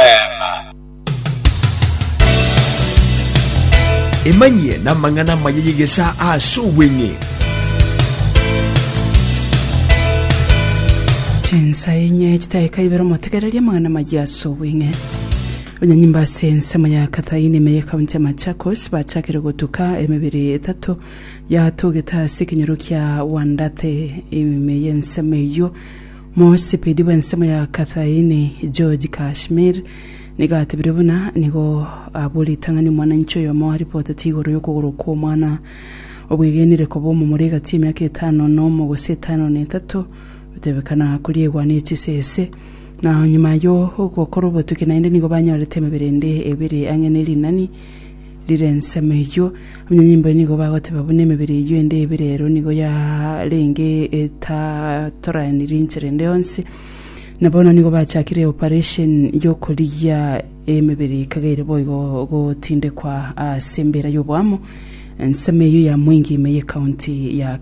Eema. Emanyie namang'ana amaya y'egesaa ase obweng'e. Chinsa enye chidakika ibere omotegererie amang'ana amaya ase obweng'e. Abanyanyimba ase ensemo ya Kathaini ime ye county ya Machakos bachakire gotuka emebere etato yatogete ase ekenyoro kia Wandate ime ye ensemo eyio Mosipedi bw'ensemo ya Kathaini, George Kashmir, nigo atebire buna nigo abwo ritang'ani omwananchi oyomo aripoteti igoro y'okogorwa kw'omwana obwegenire koba omomura egati y'emiaka etano na omo gose etano na etato, gotebekana koriegwa ne chisese. Na nyuma yo gokora obotuki naende nigo banyorete emebere ende ebere ang'e ne rinani. Rire ensemo eyio, abanyanyimbo nigo bagoteba buna emebere eyio ende ebere ero nigo yarenge etatoraniri inchera ende yonsi, na bono nigo bachakire operation y'okorigia emebere ikageire boigo gotindekwa ase embera y'oboamo. Ensemo eyio ya Mwingi ime y'ecounty ya.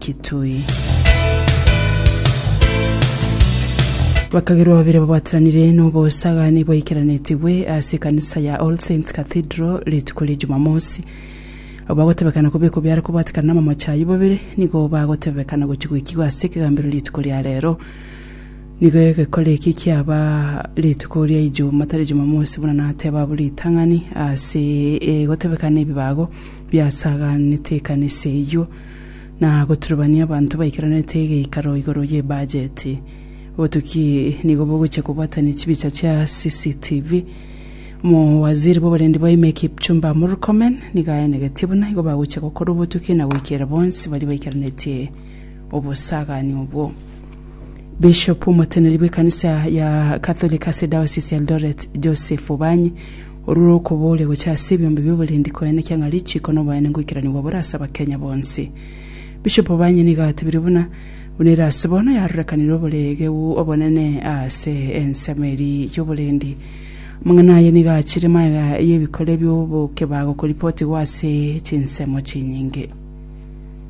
Bakagerwa babere babwatiranire nobosagani bwaikeranetigwe ase ekanisa ya All Saints Cathedral rituko ria Jumamosi. Abo bagotebekana kobekwa biare kobwatikana namamoche ayio babere nigo bagotebekana gochia goikigwa ase ekegambero rituko ria rero. Nigo egekore eke kiaba rituko ria Ijumaa tari Jumamosi buna nateba abwo ritang'ani ase egotebekana ebibago biasaganete ekanisa eyio. na goturubania abanto baikaranete geikaro igoro y'ebajeti. Obotuki nigo bogochia kobwatania chibicha chia CCTV. Omowaziri bw'oborendi bwaime Kipchumba Murkomen nigo aenegetie buna igo bagochia gokora obotuki na goikera bonsi baria baikaranetie obosagani obwo. Bishop omoteneri bw'ekanisa ya Catholic ase Diocese ya Eldoret, Joseph Obanyi, Orure okoboria gocha ase ebiombe bioborendi koya nekia ng'a richiko noboene ngoikeranigwa bore ase abakenya bonsi. Bishop Obanye nigo atebire buna, buna ere ase bono yarorekanire oboreegeu obonene aase ensemo eri yoborendi. Amang'ana aye nigo achire maega y'ebikore biobokebago koripotigwa ase chinsemo chinyinge.